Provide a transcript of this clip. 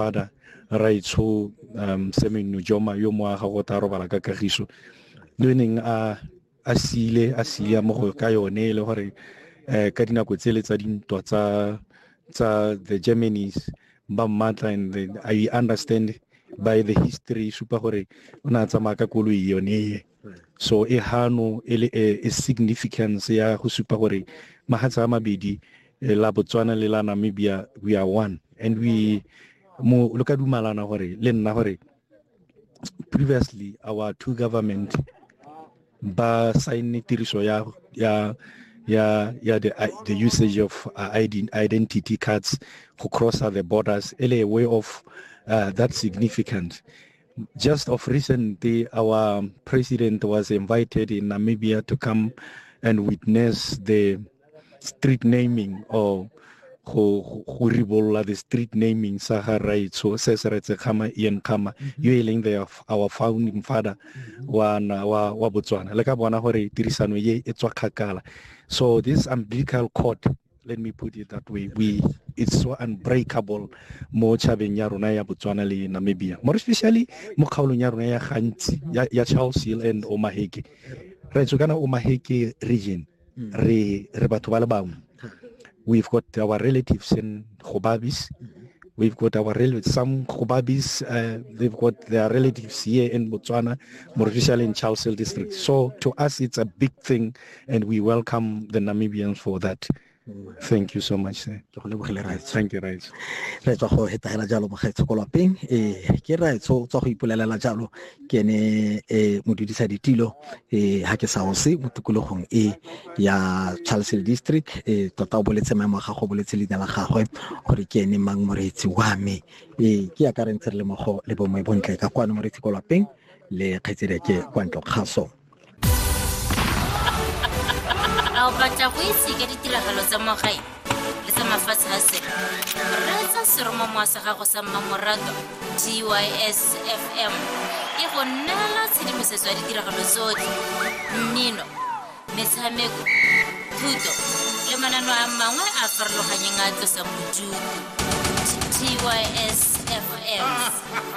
Father Raitsho um Semenno Joma yo mo aga go tla robala ka kagiso le neng a a sile a siya mo go ka yone e le gore eh ka dinako tse le tsa dintwa tsa tsa the Germans ba mmatla and I understand by the history supa gore o ne a tsamaya ka koloi yone so e hano e le e, e significance ya go supa gore mahatsa a mabedi e, la botswana le la namibia we are one and we mo lo ka dumalana gore le nna gore previously our two government ba signne tiriso ya ya ya ya the, the usage of uh, identity cards go crosser the borders ele way of uh, that significant Just of recent, our president was invited in Namibia to come and witness the street naming or go go ribolola the street naming sa ga raitsho se se retse khama ian khama mm-hmm. yo e leng the our founding father mm-hmm. wa wa wa botswana le ka bona gore tirisano ye e tswa khakala so this umbilical cord let me put it that way we it's so unbreakable mo chabeng ya rona ya Botswana le Namibia more especially mo kgaolong ya rona ya gantsi ya, ya Charles Hill and Omaheke re tswe kana Omaheke region mm. re re batho ba le bangwe we've got our relatives in Khobabis mm. We've got our relatives, some Khubabis, uh, they've got their relatives here in Botswana, Morishal in Charlesville district. So to us, it's a big thing and we welcome the Namibians for that. Thank you so much, sir. Thank you, Raitso. Re tswa go hetagela jalo mogaetsho ko lapeng eh ke Raitso tswa go ipolelela jalo ke ne eh modudisa ditilo eh ha ke sa o se mo tikologong e ya Charles District eh tota o boletse maemo ga go boletse leina la gagwe gore ke ene mang moreetsi wa me eh ke ya ka re ntse re le mogo le bomwe bontle ka kwano moreetsi ko lapeng le kgaitsedi ke kwa ntlo kgaso a o batla go itse ka ditiragalo tsa mo gae le tsa mafatshe a sele reetsa seromamowa sa gago sa mmamorato gys fm e go neela tshedimosetso ya ditiragalo tsotlhe mmino metshameko thuto le manano a mangwe a farologanyeng a tlosang bodutu gys fm